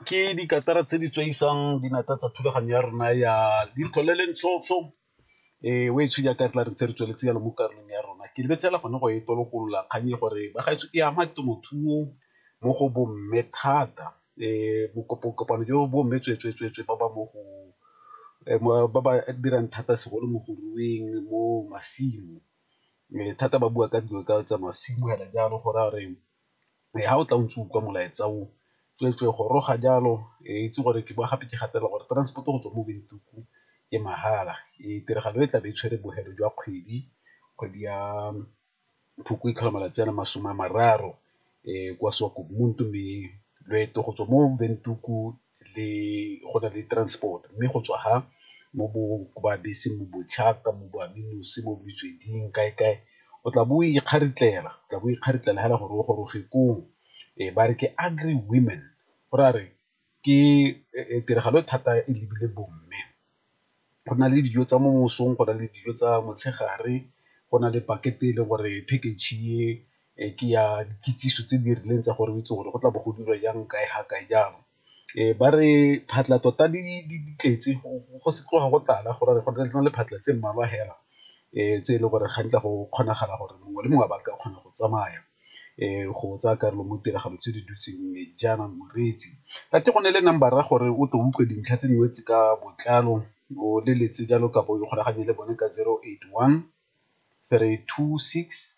ke dikatara tse di tswaisang dinata tsa thulaganyo ya rona ya lintho le lentshotsho um eh, o e tshwe jaaka re tla re tse re tsweletse yalo mo karolong ya rona ke lebetsela gone go e tolokolola kgang e gore bagaetso e ama temothuo mo go bomme thata um bokopokopano jo bomme tswetswetswetswe ba ba mo go eh, ba ba dirang thata segolo mo go rueng mo masimo um thata ba bua ka dilo ka tsa masimo hela jalo go raya gore e ha o tla o ntse o utlwa molaetsa o tsweetswee goroga jalo e itse gore ke bowa gape ke gatelela gore transport go tswa mo Windhoek ke mahala. Ee tiragalo e tlabe e tshwere bofelo jwa kgwedi, kgwedi ya Phukwi e tlhola malatsi a le masome a mararo kwa Swakopmund mme loeto go tswa mo Windhoek le go na le transport mme go tswa ha mo bo ba bese mo bo ka mo bo aminosi mo botsweding kae kae o tla bo o ikgaritlela o tla bo o ikgaritlela fela gore o goroge koo. Ee ba re ke Agri Women go ra re ke tiragalo e thata e lebile bo mme. go na le dijo tsa mo mosong, go na le dijo tsa motshegare, go na le pakete e le gore package e ke ya dikitsiso tse di rileng tsa gore o itse gore go tla bo go dirwa jang, kae ga kae jang. Ba re phatlha tota di tletse go se tloga go tlala go na le diphatlha tse mmalwa fela tse e le gore ga nkitla go kgonagala gore mongwe le mongwe a ba ka kgona go tsamaya. go tsaya karolo mo ditiragalo tse di dutseng mme jaana moreetsi a ke go ne le number a gore o tle utlwe dintlha tse dingwe tse ka botlalo o leletse jalo kapo o ikgolaganye le bone ka zero eight one three two six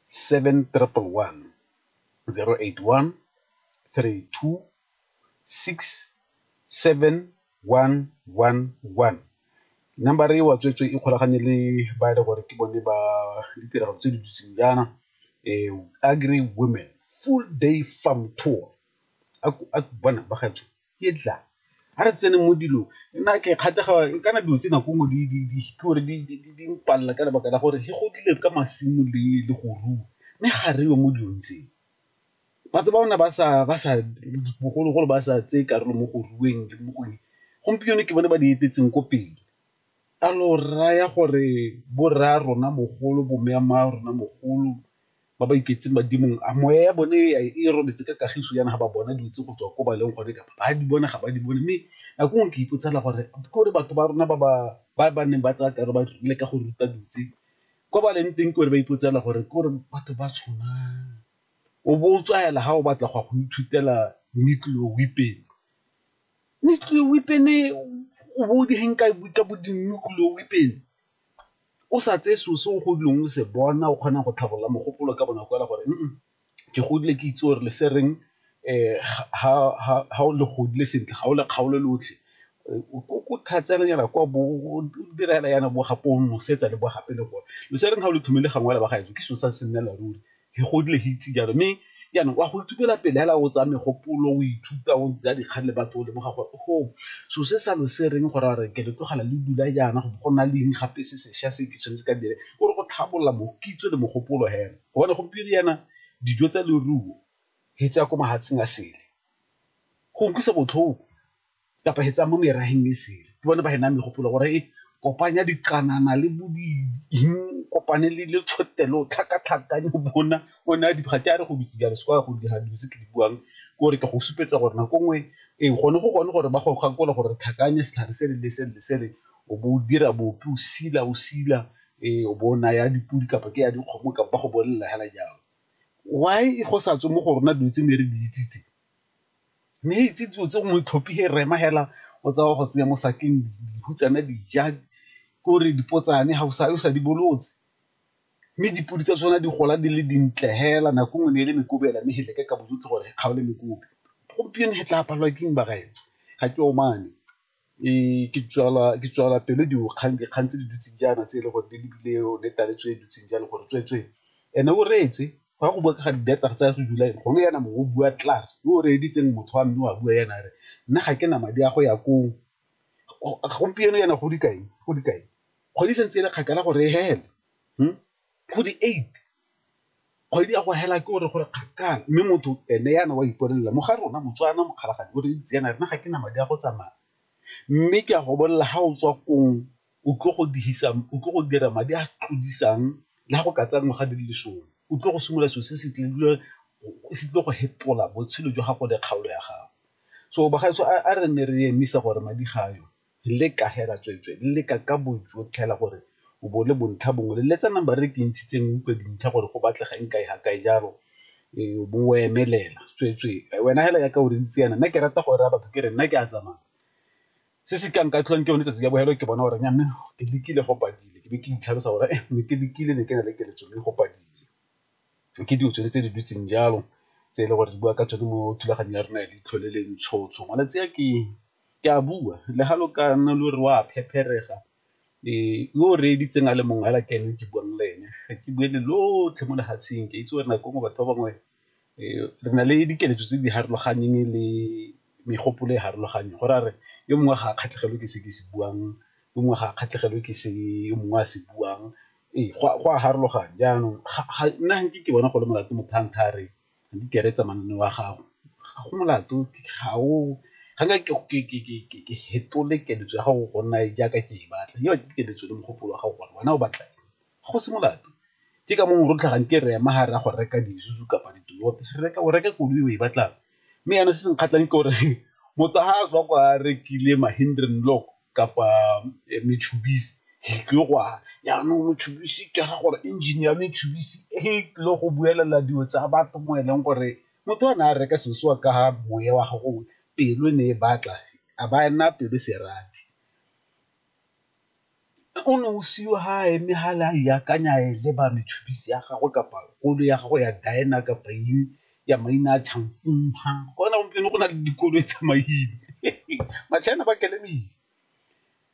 seven triple one, zero eight one three two 67111. Number e wa tsweetswe ikgolaganye le ba e le gore ke bone ba ditirelo tse di dutseng jaana Agri Women Full Day Farm Tour bona ba gaetsho ke tla a re tsene mo dilong nna ke kgatlhega kana dilo tse nako nngwe di mpalela ka lebaka la gore go tlile ka masimo le le go rua mme ga re yo mo dilong tseo. Batho ba rona ba sa bogologolo ba sa tseye karolo mo go rueng le mo go eng, gompieno ke bone ba di etetseng ko pele. A lo raya gore bo rra rona mogolo, bo mme wa rona mogolo ba ba iketseng badimong a moya ya bone e robetse ka kagiso jaana ga ba bona dilo tse go tswa ko ba leng gone kapa ba di bona ga ba di bone, mme nako nngwe ke ipotsa fela gore ke gore batho ba rona ba ba neng ba tsaya karolo ba leka go ruta dilo tse. Kwa ba leng teng kore ba ipotsela gore kore batho ba tshwanang, o bo o tswa hela ha o batla go ya go ithutela nuclear weapon. Nuclear weapon e o bo o di hang ka bo di nuclear weapon o sa tseye selo se o godileng o se bona o kgona go tlhabolola mogopolo ka bonako hela gore . ke godile ke itse gore le se reng ga o le godile sentle ga o le kgaolo lotlhe ko thatsa nyana kwa bo dira fela yana bo gape o nosetsa le bo gape le gore lo se reng ga o le thomile gangwe la ba gaetsho ke so sa se nnela ruri ke godile ke itse jalo mme jaanong wa go ithutela pele fela o tsaya megopolo o ithuta o ja dikgang le batho o lemoga gore go so se sa lo se reng gore a re ke le tlogela le dula jaana go bo go na leng gape se sešwa se ke tshwanetse ka dire ke gore go tlhabolola kitso le mogopolo fela. Gobane gompieno yana dijo tsa leruo he tsaya ko mahatseng a sele go nkusa botlhoko kapa he tsaya mo meraheng e sele ke bone ba he naya megopolo gore e kopanya diqanana le bo kopane le le tšhotelo tlhakatlhakanya o bona o naya diphatsa ke a re go dutse jalo se kwa go dira dilo tse ke di buang ke gore ke go supetsa gore nako nngwe e gone go gone gore ba go gakolola gore re tlhakanya setlhare se le le se le le se le o bo o dira bopi o sila o sila Ee, o bo o naya dipodi kapa ke ya dikgomo kapa ba go bolelela hela jalo. Why go sa tswe mo go rona dilo tse ne re di itse tse, ne re itse dilo tse gongwe tlhopi he rema hela o tsaya o go tseya mo sakeng dihutsana di ja kore dipotsane ga o sa yo sa di bolotse, mme dipodi tsa tsona di gola di le dintle hela nako nngwe ne e le mekobi hela mme he leke ka bojotlhe gore re kgaole mekobi, gompieno he tla palelwa ke eng bagaetsho ga ke omane. Ke tswala pelo dikgang tse di dutseng jaana tse e le gore di lebile yone taba tse di dutseng jalo gore tsweetswee and-e o reetse fa go bua ga di-data tsa go July gone jaana mongwe o bua klaar yo o reeditseng motho wa mme o a bua jaana a re nna ga ke na madi a go ya koo. Gompieno jaana go dikae, go dikae? Kgwedi e santse e le kgakala gore e fele . Kgwedi eight, kgwedi ya go hela ke gore gore kgakala mme motho ene yana wa ipolelela mo ga rona Motswana mokgalagadi o re itse yana rena ga ke na madi a go tsamaya mme ke a go bolelela ga o tswa kong o tlo go dihisa, o tlo go dira madi a tlodisang le ga go ka tsaya ngwaga di le lesome o tlo go simolola selo se se tlile go fetola botshelo jwa gago le kgaolo ya gago. So bagaetsho a re nne re emisa gore madi ga a yo. Leka hela tsweetswee, leka ka bojotlhe hela gore o bo le bontlha bongwe, leletsana ba re ke ntshitseng o utlwe dintlha gore go batlega eng kae ga kae jalo o bo o emelela tsweetswee wena hela yaka o reditse yana nna ke rata go raya batho ke re nna ke a tsamaya se se ka nka tlholang ke yone tsatsi ya bofelo ke bona gore nnyame ke lekile go padile ke be ke itlhalosa gore ne ke lekile ne ke na le keletso mme go padile. Ke dilo tsone tse di dutseng jalo tse e le gore di bua ka tsone mo thulaganyong ya rona ya leitlho le le ntsho ntsho malatsi a ke Ke a bua, le ga lo ka nna lo re o a phepherega, yo o reeditseng a le mongwe fela ke ene ke buang le ene. Ga ke bue le lotlhe mo lefatsheng, ke a itse gore nako nngwe batho ba bangwe re na le dikeletso tse di farologaneng le megopolo e farologaneng, go ra re yo mongwe ga a kgatlhegelwe ke se ke se buang, yo mongwe ga a kgatlhegelwe ke se yo mongwe a se buang, ee go a farologana. Jaanong nna ga nke ke bona go le molato motho a ntha a re di ikaeletse mananeo a gago ga go molato ga o ga nka ke fetole keletso ya gago go nna jaaka ke e batla yo ke keletso le mogopolo wa gago gore wena o batla go se molato ke ka mongwe rotlhe ga nke re ema ga re ya go reka di-Isuzu kapa di-Toyota re reka o reka koloi o e batlang mme jaanong se se nkgatlhang ke gore motho ga a tswa kwa rekile Mahindra Lock kapa Mitsubishi e tlile go wa, jaanong Mitsubishi ke ra gore engine ya Mitsubishi e tlile go buelela dilo tsa batho mo e leng gore motho o ne a reka selo seo ka moya wa gago pelo e ne e batla a ba a nna pelo e se e rate. O ne o siwa ga a eme fale a iakanya a e leba Mitsubishi ya gagwe kapa koloi ya gago ya Dyna kapa eng ya maina a Chanfumha go na gompieno go na le dikolo e tsamaile ma-China ba kelemile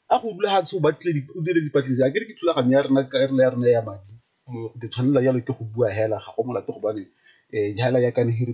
a go dula ga tsho ba tle o dire dipatlisiso a ke re ke thulaganyo ya rona ka rela ya rona ya madi ke tshwanela jalo ke go bua hela ga go molato gobane um hela ya ka ne re